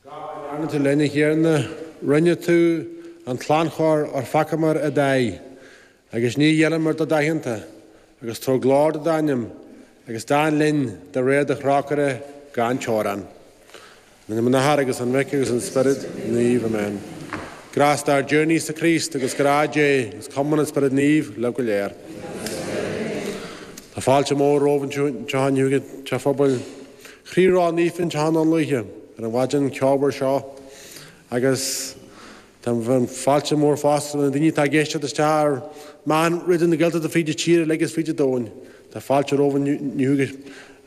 Gach a ndearna tú linn a Thiarna, rinne tú é as lánchóir óir pheacaíomar i d'aghaidh, agus níor ghéilleamar do d'aitheanta, agus tabhair glóir do d'ainm, agus déan linn de réir do thrócaire gan teorainn. In ainm an Athar agus an Mhic agus an Spioraid Naoimh. Amen. Grásta ár dTiarna Íosa Críost agus grá Dé agus cumann an Spioraid Naoimh libh go léir. Tá fáilte mhór romhaibh anseo inniu ag an Teach Phobail. Chroí Rónaofa anseo i nDún Lúiche ar an mhaidin cheomhar seo agus tá fáilte mhór fosta roimh na daoine atá ag éisteacht isteach ar mheán Raidió na Gaeltachta fríd an tír uilig is fríd an domhain. Tá fáilte romhaibh inniu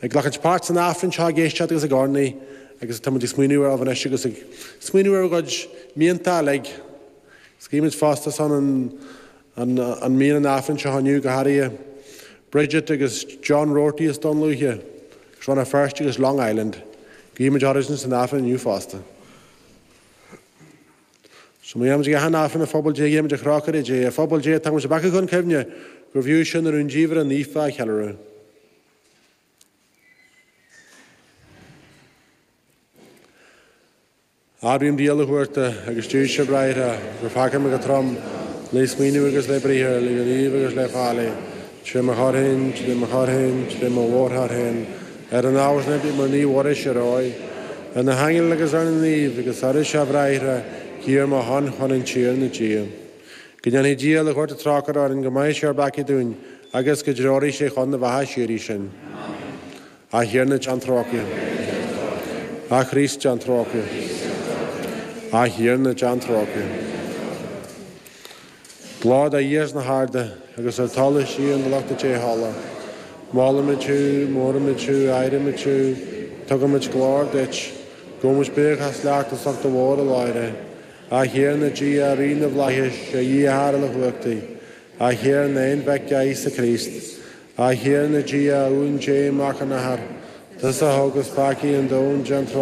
ag glacaint páirt san Aifreann seo, ag éisteacht agus ag urnaí agus táimid ag smaoineamh oraibh anois agus ag smaoineamh ar bhur gcuid mianta uilig. Is guímid fosta ar son an An mianta an Aifrinn seo inniu go háirithe, Bridget agus John Roarty as Dún Lúiche, Béal Feirste agus Long Island. Guímid orthusan san Aifreann inniu fosta. Sa mbliain táimid ag aithint Aifreann a Phobal Dé, guímid trócaire Dé ar Phobal Dé tugaimis ár bpeacaí chun cuimhne gurbh fhiú sinn na rúndiamhra naofa a cheiliúradh. Admhaím do Dhia uilechumhachtach agus daoibhse a bhráithre gur pheacaigh mé go trom le smaoineamh agus le briathar, le gníomh agus le faillí, tré mo choir féin, tré mo choir féin, tré mo mhórchoir féin, ar an ábhar sin impím ar Naomh Muire síorógh, ar na haingil agus ar na naoimh, agus oraibhse, a bhráithre, guí ar mo shon chun an Tiarna Dia. Go ndéanfaidh Dia uilechumhachtach trócaire orainn, go maithfidh sé ár bpeacaí dúinn, agus go dtreoraí sé chun na beatha síoraí sinn. Amen. A Thiarna déan trócaire. A Chríost déan trócaire. A Thiarna déan trócaire. Glóir do Dhia sna harda agus ar talamh síocháin do lucht dea-thola. Molaimid thú, móraimid thú, adhraimid thú, tugaimid glóir duit, gabhaimid buíochas leat as ucht do mhórghlóire. A Thiarna Dia, a Rí na bhFlaitheas, a Dhia a Athair uilechumhachtaigh, a Thiarna a Aonmhic, a Íosa Críost, A Thiarna Dia, a Uain Dé, Mac an Athar, tusa a thógas peacaí an domhain, déan trócaire